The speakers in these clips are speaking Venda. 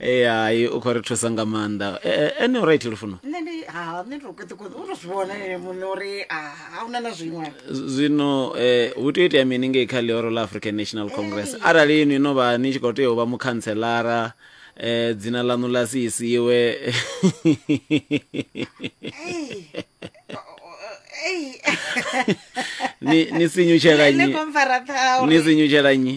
ee hai u khou ri thusa nga maanḓa Eh, eh, ene u right lufuno nṋe ndi ha nṋe ndi to kweṱekweṱe u to zwi vhona ene muṋe uri a a una na zwiṅwe Z- zwino eh, hu tea u itea mini ngei kha ḽihoro ḽa african national congress arali inwi no vha ni tshi khou tea u vha mukhantselara eh, dzina ḽaṋu ḽa si isiwe ni ni sinyutshela ene nnyi komfara ṱhauri ni sinyutshela nnyi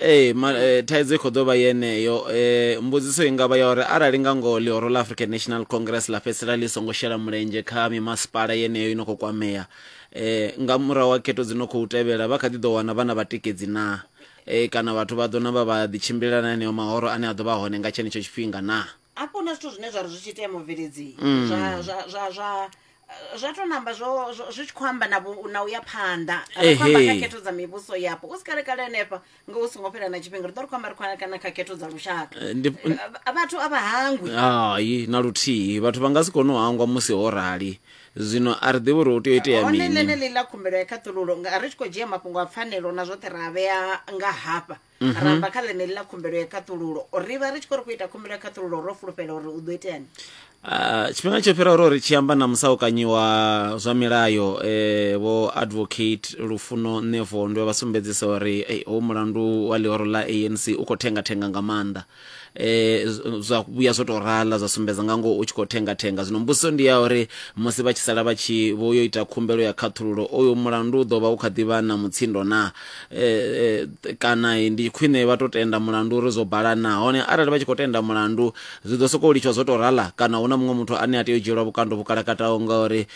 ee ma, e, thaidzo i khou ḓo vha yeneyo e, mbudziso i nga vha ya uri arali nga ngoho ḽihoro ḽa african national congress ḽa fhedzisela ḽi songo shela mulenzhe kha mimasipala yeneyo i no khou kwamea e, nga murahu ha khetho dzi no khou tevhela vha kha ḓi ḓo wana vha na vhatikedzi naa e, kana vhathu vha ḓo na vha vha ḓitshimbilela na eneo mahoro ane a ḓo vha hone nga tshenetsho tshifhinga naa hafho huna zwithu zwine zwa ri zwi tshi itea mubveledzii zwa zwa zwa zwa zwa to namba zwo zwo- zwi tshi khou amba na vhu- na u ya phanḓa ri khou amba Ehe. kha khetho dza mivhuso yapo u si kale kale henefha nga u songo fhela na tshifhinga ri ḓo ri khou amba ri khou amba kana kha khetho dza lushaka Eh, ndi- Eh, vha- vhathu a vha hangwi hai na luthihi vhathu vha nga si kone u hangwa musi ho rali zwino a ri ḓivhi uri hu tea u itea hone mini ḽeneḽi ḽa khumbelo ya khaṱhululo nga ri tshi khou dzhia mafhungo a pfanelo na zwoṱhe ra a vhea nga hafha Mhm. ra bva kha ḽeneḽi ḽa khumbelo ya khaṱhululo ri vha ri tshi khou ri khou ita khumbelo ya khaṱhululo ro fulufhela uri u ḓo iteani Ah, tshifhinga tsho fhiraho ro ri tshi amba na musaukanyi wa zwa milayo eh, vho advocate lufuno nevondwe vha sumbedzisa uri eh, hoyu mulandu wa ḽihoro ḽa anc u khou thengathenga nga maanḓa eh, z- zwa vhuya zwo tou rala zwa sumbedza nga ngoho u tshi khou thenga thenga zwino mbudziso ndi ya uri musi vha tshi sala vha tshi vho yo ita khumbelo ya khaṱhululo oyo mulandu u ḓo vha u kha ḓivha na mutsindo na eh, eh, kana eh, ndi khwine vha tou tenda mulandu uri zwo bala na hone arali vha tshi khou tenda mulandu zwi ḓo sokou litshwa zwo tou rala kana hu na muṅwe muthu ane a tea u dzhielwa vhukando vhukalakataho ngauri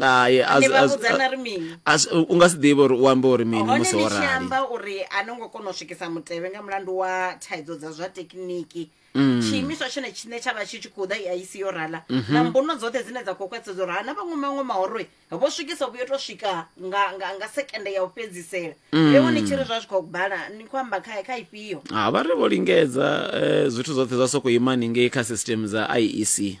Hai, a Ni zwi- vha a zwi- vhudza na ri mini? a zwi- u nga si ḓivhe uri u ambe uri mini hone musi ni ho tshi rali amba uri a no ngo kona u swikisa mutevhe nga mulandu wa thaidzo dza zwa tekiniki Mm. tshiimiswa tshone tshine tsha vha tshi tshi khou ḓa i aisi yo rala Mhm. na mbuno dzoṱhe dzine dza khou khwaṱhisedza uri hana vhaṅwe maṅwe mahoro vho swikisa vhuyo to swika nga, nga, nga sekende ya u fhedzisela Mm. ewo ni tshi ri zwa zwi khou bala ni khou amba kha, kha ifhio ha vha ri vho lingedza eh, zwithu zwoṱhe zwa sokou ima ningei kha system dza iec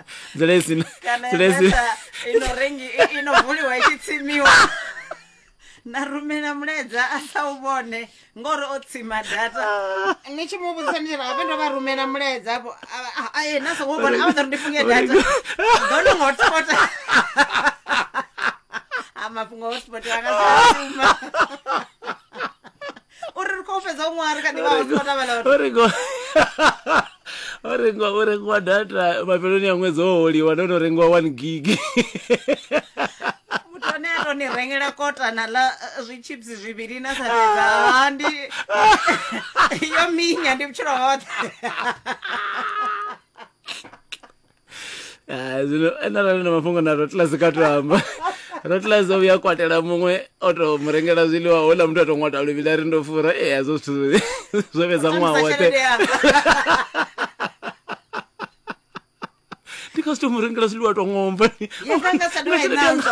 nzila i sina kana nzila i sina data ino rengi i- ino vuliwa i tshi tsimiwa na rumela mulaedza a sa u vhone ngori o tsima data ni tshi mu vhudzisa ndi rabe ndo vha rumela mulaedza hapo aye na songo vhona a vha ḓo ri ndi funge data ndo no ngo hotspota a mafhungo hotspot anga sa shuma o re re ko fetsa o ngware ka dibao tlo tabela o re ko o rengwa o rengwa data mafeloni ya ṅwedzi o holiwa ndo no rengwa one gig muthu ane a to ni rengela kotana la eh, zwichips zwivhili na sa fhedza ha ndi yo minya ndi vhutshilo hoṱhe Ah, zwino ene arali na mafhungo na rotlase kha to amba rotlase o vhuya a kwatela muṅwe o to mu rengela zwiḽiwa houḽa muthu a to ṅwata luvhili a ri ndo fura e hazwo zwithu zwo fhedza ṅwaha Khamusi woṱhe tshelede yanga. ndi nga si to mu rengela zwiḽiwa to ṅomba Ye, nga nga sa dovha i nanzwa.